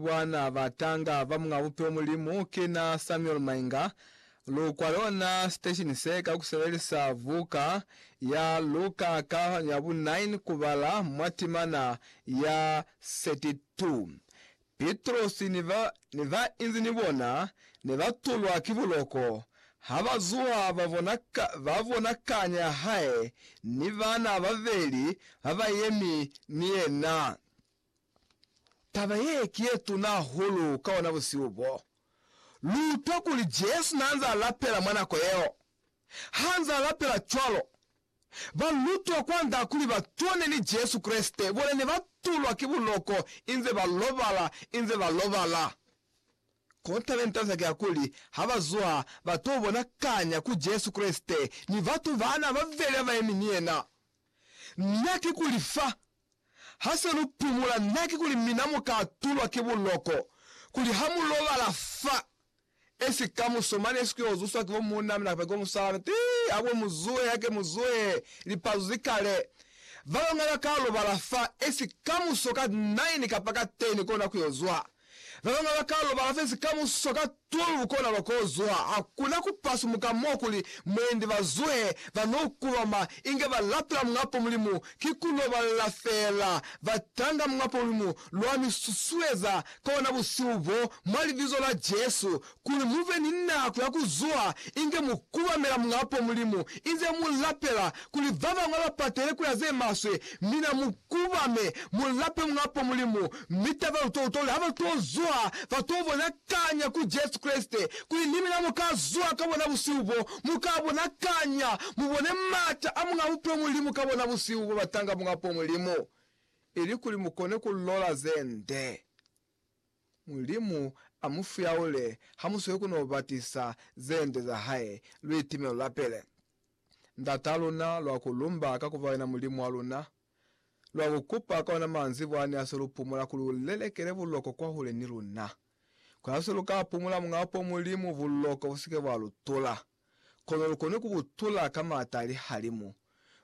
Bana ba tanga ba Muñ'a Bupilo Mulimu ki na Samuel Mainga. Lu kwale ona siteshini se ka ku sebelisa buka ya lu ka kalafanyo ya bu 9 ku bala mwa timana ya 32. Pitrosi ni ba ne ba inzi ni bona ne ba tulwa ki buloko. Ha ba zuha ba bona, ba bona kanya ya hae ni bana babeli ba ba yemi ni yena. Taba ye ki ye tuna hahulu ka bona busihu bo. Lu utwa kuli Jesu n'a nz'a lapela mwa nako yeo. Ha nz'a lapela cwalo, balutwa kwa nda kuli ba tone ni Jesu Kreste bona ne ba tulwa ki buloko inze ba lobala inze ba lobala. Kont'a ne ntanza ki ya kuli ha ba zuha ba t'o bonakanya ku Jesu Kreste ni batu ba n'a ba vele ba ba yemi ni yena. Na ki kuli fa ha se lu pumula, na ki kuli mina mu ka tulwa ki buloko, kuli ha mu lobala fa esi kamuso mane esi ku yo zuswa ki bo muuna mina kapa ki bo musalaa mina, tii, ha ku mu zuhe, hake mu zuhe, lipazu zi kale. Ba bañwi ba ka lobala fa esi kamuso ka nine kapa ka ten kona ku yo zwa. Ba bañwi ba kalo ba lafezi ka mususo ka tulu lukona lwa kozwa. Ha ku na ku pasumuka mo kuli mwendi ba zuhe ba n'o kulama inge ba lapela Muñapo Mulimu, ki ku n'o ba lela fela. Ba tanga Muñapo Mulimu lwa mi susueza ka ona busihu boo mwa Libizo la Jesu, Kuli mu be ni nako ya ku zuha inge mu kubamela Mulapo, Mulimu, inze mu lapela kuli ba bañwi ba patele ku ya ze maswe, mina mu kubame, mu lape Mulapo, Mulimu, mi taba lu to uta kuli ha ba to zuha, ba to bona kanya ku Jesu Kreste, kuli ni mina mu ka zuha ka bona busihu bo, mu ka bona kanya, mu bone m'ata a Muñ'a Bupilo Mulimu ka bona busihu bo batanga Mulapo, Mulimu, ili kuli mu kone ku lola ze nde. Mulimu a mu fuyaule ha mu sweli ku no ba tisa ze nde za hae, luitime lu lapele. Ndat'a luna, lwa ku lumba ka ku ba yena Mulimu wa luna. Lwa ku kupa ka ona manzibwa ni ha se lu pumula kuli u lelekele buloko kwahule ni luna. Ku ha se lu ka pumula mwa po Mulimu buloko bu si ke bwa lu tula, kono lu koni ku bu tula ka m'ata a lihalimu.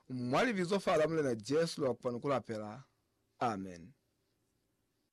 Mwa Libizo fa la Mulena Jesu lwa kupa ni ku lapela. Amen.